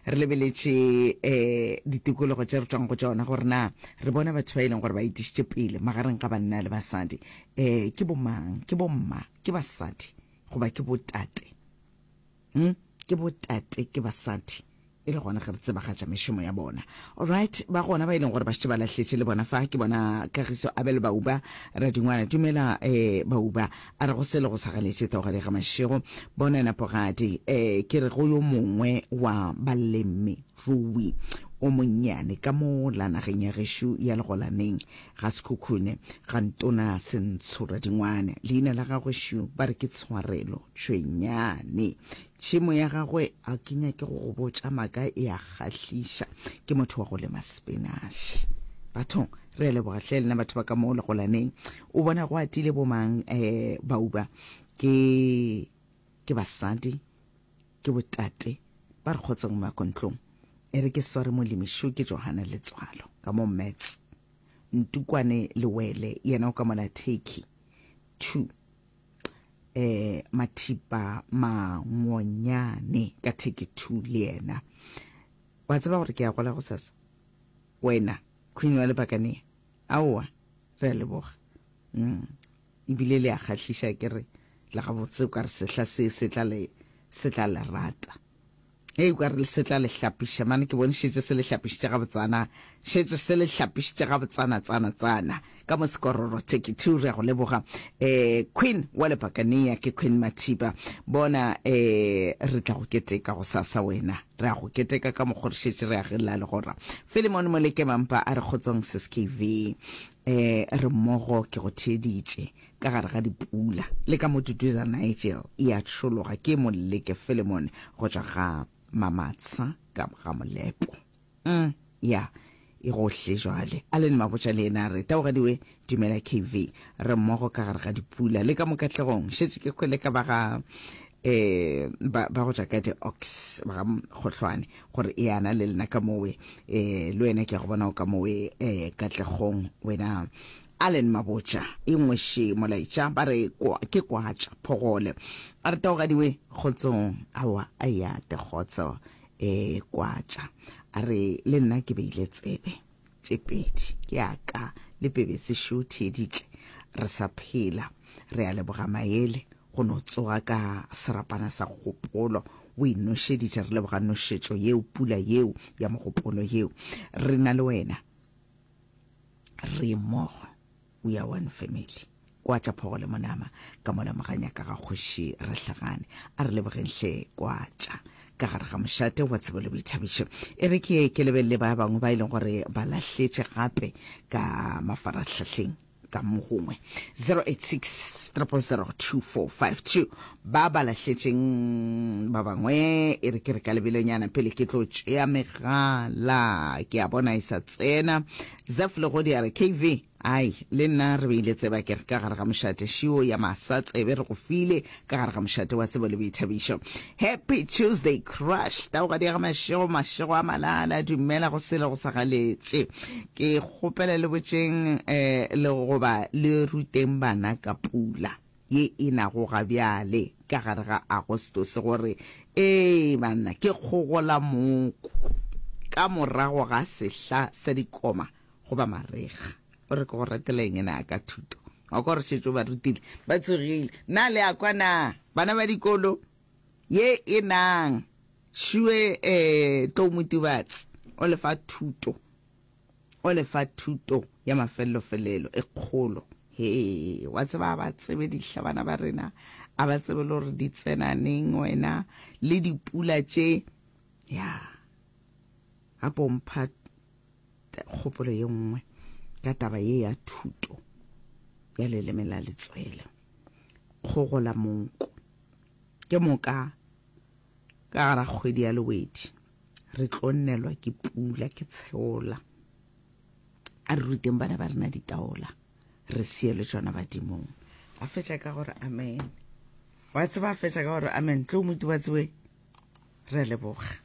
re lebeletše um ditikologo tše re tswang go tšona gore na re bona batho ba e leng gore ba itišitše pele magareng ga banna le basadi um ke bomang ke bomma ke basadi goba ke botate um ke botate ke basadi e le gona ge re tsebagatša mešomo ya bona allright ba gona ba e leng gore ba šetse ba lahletše le bona fa ke bona kagiso abel bauba radingwana dumela um bauba A re, Go se le go sa ganetše taugadi ga mašego. Bona yena pogadi. Ee, ke re, go yo mongwe wa balemirui o monnyane ka mo la nageng ya gešo ya Legolaneng, ga Sekhukhune, ga Ntona Sentshoradingwane. Leina la gagwe šo ba re ke Tshwarelo Tšhwenyane. Tšhemo ya gagwe, ga ke nyake go go botša maaka, e a kgahliša. Ke motho wa go lema sepinaše. Bathong, re a leboga hle lena batho ba ka mo Legolaneng. O bona go atile bomang eh, bauba ke ke basadi ke botate ba re kgotseng makontlong e re ke sware molimišu ke johana letswalo ka mo mats ntukwane lewele yena o ka mola turkey two eh mathipa mangonyane ka turkey two le yena wa tseba gore ke ya gola go sasa wena queen wa lebakane Aowa, re a leboga. Umm, e bile le a kgahliša ke re, le gabotse o ka re sehla se se tla le, se tla le rata. Hei, o ka re se tla le hlapiša, mane ke bone šetše se le hlapišitše gabotsana, šetše se le hlapišitše gabotsana, tsana, tsana, ka mo sekororo Turkey two. Re a go leboga, um, Queen wa Lepakania, ke Queen Mathiba. Bona, um, re tla go keteka gosasa wena. Re a go keteka ka mokgo re šetše re agella legora. Filemone Molekemampa a re kgotsong Seskv. E re mmogo ke go theeditše ka gare ga dipula le ka mo Duduza Nigel e a tšhologa ke Moleke Filemone go tšwa ga Mamatsha ka ga Molepo. Um, ya, E go hle jwale. Allen Mabotja le yena a re, Taogadi we, dumela KV. Re mmogo ka gare ga dipula. Le ka mo Katlegong. Šetše ke hwele ka ba ga um ba, ba go tšwa ka di-ox, ba ga Kgohlwane, gore eana le lena ka mowe. Um le wena ke a go bona o ka mowe um Katlegong wena. Allen Mabotja, E ngweše molaetša, ba re kwa, ke kwatša, phogole. A re, Taogadi we, kgotsong. Aowa, a eate kgotso. E kwa tša, a re, Le nna ke beile tsebe tše pedi ya ka le pebetse šo theeditše re sa phela. Re a leboga Maele go no tsoga ka serapana sa kgopolo o e nošeditše. Re leboga nošetšo yeo, pula yeo ya mogopolo yeo. Re na le wena re mmogo. We are one family. Kwa tša phogo le monama ka mola moganya ka ga kgoši Rahlagane. A re lebogeng hle kwa tša ka gare ga mošate wa tsebo le boithabišo. E re ke ye ke lebelele ba bangwe ba e leng gore ba lahletše gape ka mafarahlahleng ka mo gongwe 0860002452 ba ba lahletšeng ba bangwe e re ke re ka lebelonyana pele ke tlo tšea megala ke a bona e sa tsena Zeph Legodi a re, KV, Ai, le nna re beile tseba ke re ka gare ga mošate, šiwo ya masa tsebe re go file ka gare ga mošate wa tsebo le boithabišo. Happy Tuesday Crush, tawoga diega mašego, mašego a malala, dumela go sele go sa galetše. Ke kgopela le botšeng eh, le goba le ruteng bana ka pula. ye e nago ga bjale ka gare ga Agostose gore, Ee, banna, ke kgogola mooko ka morago ga sehla sa dikoma goba marega. O re, Ke go ratela eng na ka thuto? Wa kwa gore šetšo ba rutile, ba tsogile. Na le a kwa na, bana ba dikolo? Ye e nang šue, ee, tlou Motibatsi o le fa thuto o le fa thuto ya mafellofelelo e kgolo. Hee, wa tseba, a ba tsebe dihla bana ba rena, a ba tsebe le gore di tsena neng, wena, le dipula tše. Ya, a pompha kgopolo ye nngwe ka taba ye ya thuto ya leleme la letswele. Kgogo la monko. Ke moka ka gara kgwedi ya lewedi. re tlo nnelwa ke pula ke tsheola a re ruteng bana ba rena ditaola re seele tsona badimong a fetša ka gore amen wa tseba a fetša ka gore amen tlo motu wa tsebe re leboga